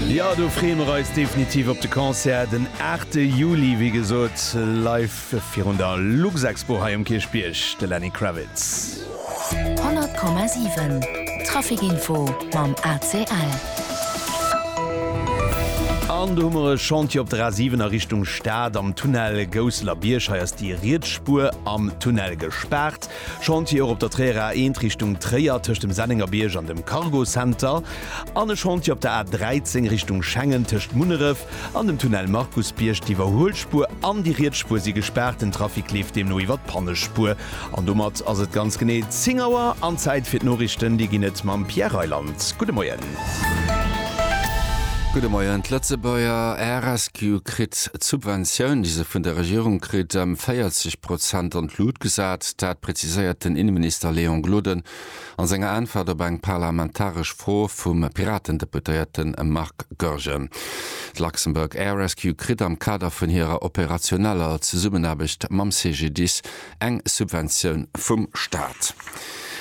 Jo, do freeë mer eis definitiv op de Concert den 8 Juli, wéi gesot live virun der Luxexpo hei um Kierchbierg, de Lenny Kravitz. 100,7 Traficinfo mam ACL. An do hu mer e Chantier op der A 7 a Richtung Stad am Tunnel Gousseler Bierg. Hei ass déi riets Spuer am Tunnel gespaart. Chantier och op der Tréierer A 1 Richtung Tréier tëscht dem Sennengerbierg an dem Cargo Center an e Chantier op der A 13 Richtung Schengen tëscht Munneref an dem Tunnel Markusbierg. D'Iwwerhuelspuer an déi riets Spuer si gespaart. Den Trafic leeft deemno iwwert d'Pannespuer. An domat ass et ganz genee 10 Auer an Zäit fir d'Noriichten. Déi ginn et mam Pierre Reyland. Gudde Moien. Gudde Moien. D'Lëtzebuerger RSQ kritt d'Subventioun, déi se vun der Regierung kritt, ëm 40 Prozent an d'Lut gesat. Dat präziséiert den Inneminister Léon Gloden a senger Äntwert op eng parlamentaresch Fro vum Piratendeputéierte Marc Goergen. D'Luxembourg Air Rescue kritt am Kader vun hirer operationeller Zesummenaarbecht mam CGDIS eng Subventioun vum Staat.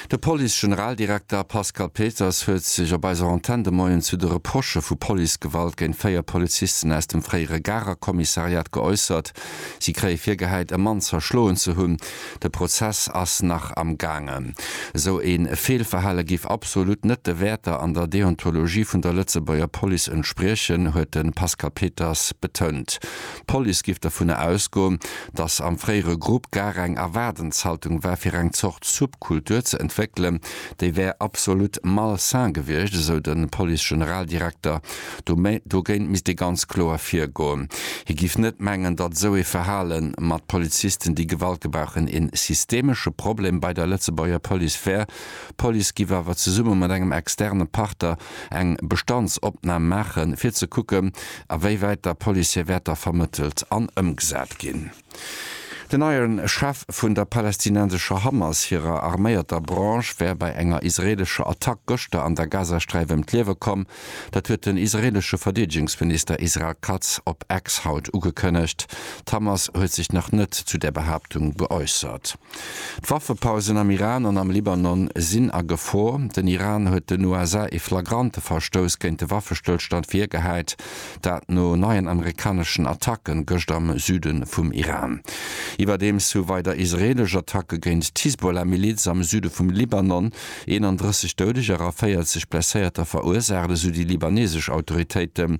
De Police-Generaldirekter Pascal Peters huet sech op eiser Antenn de Moien zu de Reprochë vu Policegewalt géint véier Polizisten aus dem fréiere Garer Kommissariat geäussert. Si kréie virgehäit, e Mann zerschloen ze hunn. De Prozess ass nach am gaangen. Esou ee Feelverhale géif absolut net de Wäerter an der Deontologie vun der Lëtzebuerger Police entspriechen, huet de Pascal Peters betount. D'Police géif dovun ausgoen, datt am fréiere Grupp gar eng Erwaardenshaltung war, fir eng Zort Subkultur ze entwéckelen. Déi wär absolut malsain gewiescht, esou de Police-Generaldirekter Dogéint misst ee ganz kloer virgoen. Hie giff net mengen, datt esou ee Verhale mat Polizisten, déi Gewalt gebrauchen, ee systemesche Problem bei der Lëtzebuerger Police wär. D'Police giff awer zesumme mat engem externe Partner eng Bestandsopnam maachen, fir ze kucken, awéiwäit der Police hir Wäerter vermëttelt an ëmgesat ginn. Den neie Chef vun der palästinensescher Hamas hirer arméierter Branche wär bei enger israeelescher Attack gëschter an der Gazasträif ëm d'Liewe komm. Dat huet den israeelesche Verdeedegungsminister Israel Katz op X haut ugekënnegt. D'Hamas huet sech nach net zu där Behaaptung geäussert. D'Waffepausen am Iran an am Libanon sinn a Gefor. Den Iran huet den USA ee flagrante Verstouss géint de Waffestëllstand virgehäit, dat no neien amerikaneschen Attacken gëscht am Süde vum Iran. Iwwerdeems hu weider israeelesch Attacke géint d'Hisbollah-Miliz am Süde vum Libanon 31 Doudeger a 40 Blesséierter verursaacht, esou déi libanesesch Autoritéiten.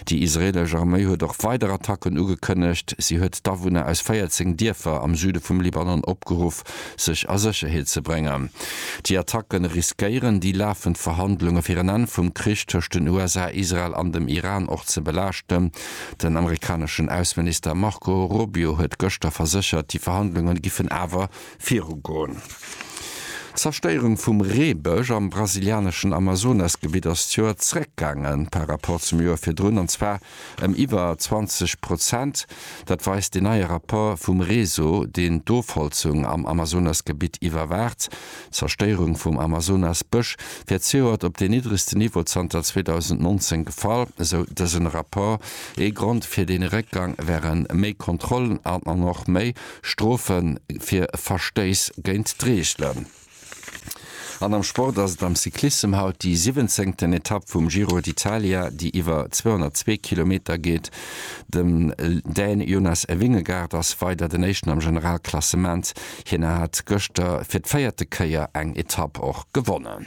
Déi israeelesch Arméi huet och weider Attacken ugekënnegt. Si huet d'Awunner aus 14 Dierfer am Süde vum Libanon opgeruff, sech a Sécherheet ze bréngen. Déi Attacke riskéieren, déi lafend Verhandlunge fir en Enn vum Krich tëscht den USA, Israel an dem Iran och ze belaaschten. Den amerikaneschen Ausseminister Marco Rubio huet gëschter verséchert, déi Verhandlunge giffen awer Virugoen. D'Zerstéierung vum Reebësch am brasilianeschen Amazonasgebitt ass d'Joer zréckgaangen par rapport zum Joer virdrun, an zwar ëm iwwer 20 Prozent. Dat weist deen neie Rapport vum Réseau, deen d'Ofholzung am Amazonasgebitt iwwerwaacht. D'Zerstéierung vum Amazonasbësch wär d'Sioert op deen niddregste Niveau zanter 2019 gefall, esou dësen Rapport. Ee Grond fir dee Réckgang wäre méi Kontrollen an och méi Strofe fir Verstéiss géint d'Reegelen. An am Sport ass et am Cyclissem haut déi siwwenzéngten Etapp vum Giro d'Italia, déi iwwer 202 Kilometer geet. Dem Dän Jonas Vingegaard ass weider den Éischten am Generalklassement. Hien hat gëschter fir d'véierte Kéier eng Etapp och gewonnen.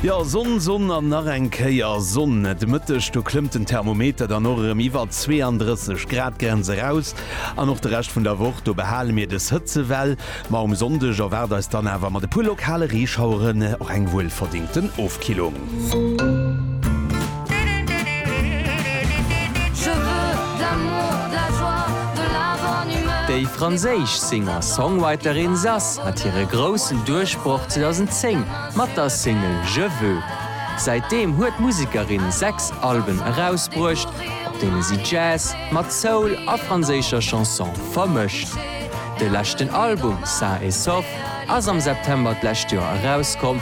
Jo, Sonn, Sonn an nach eng Kéier Sonn. De Mëtteg, do klëmmt den Thermometer dann och erëm iwwer d'Zweeënddrësseg-Grad-Grenz eraus. An och de Rescht vun der Woch, do behale mir des Hëtzewell. Ma um Sonndeg erwaart eis dann awer mat e puer lokale Reeschaueren och eng wuelverdéngten Ofkillung. Déi franséisch Singer-Songwriterin Zaz hat hire groussen Duerchbroch 2010 mat der Single Je veux. Säitdeem huet d'Musekerin sechs Alben erausbruecht, op deene si Jazz mat Soul a franséischer Chanson vermëscht. De leschten Album Sain et Sauf ass am September d'lescht Joer erauskomm.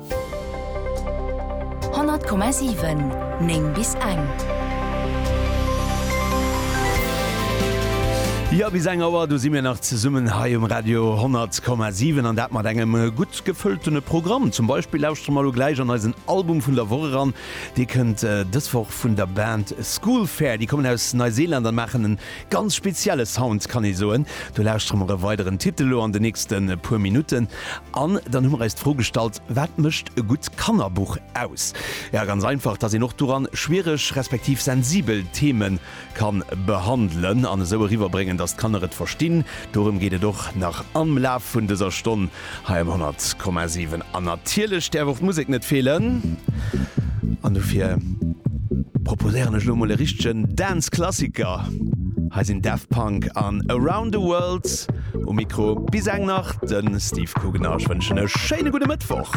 100,7 9 bis eng. Jo, bis eng Auer, do si mir nach zesummen hei um Radio 100,7 an dat mat engem gutt gefëltene Programm. Zum Beispill lauschtere mer elo gläich an eisen Album vun der Woch eran. Dee kënnt dës Woch vun der Band Schoolfair. Déi kommen aus Neiseeland an maachen en Ganz spezielle Sound kann ee soen. Do lauschtere mer e weideren Titel elo an de nächste puer Minutten. An dann hu mer eis d'Fro gestallt, wat mécht e gutt Kannerbuch aus? Jo, ganz einfach, dass een och doran schwiereg respektiv sensibel Theme ka behandelen an esou eriwwerbréngen, dass d'Kanner et verstinn. Dorëm geet et och nach am Laf vun dëser Stonn. Hei um 100,7. An natierlech däerf och d'Musek net feelen. An dofir proposéieren ech elo mol e richtegen Dance-Klassiker. Hei sinn Daft Punk an Around the World um Mikro. Bis eng nach, de Steve Kugener. Ech wënschen e schéine gudde Mëttwoch.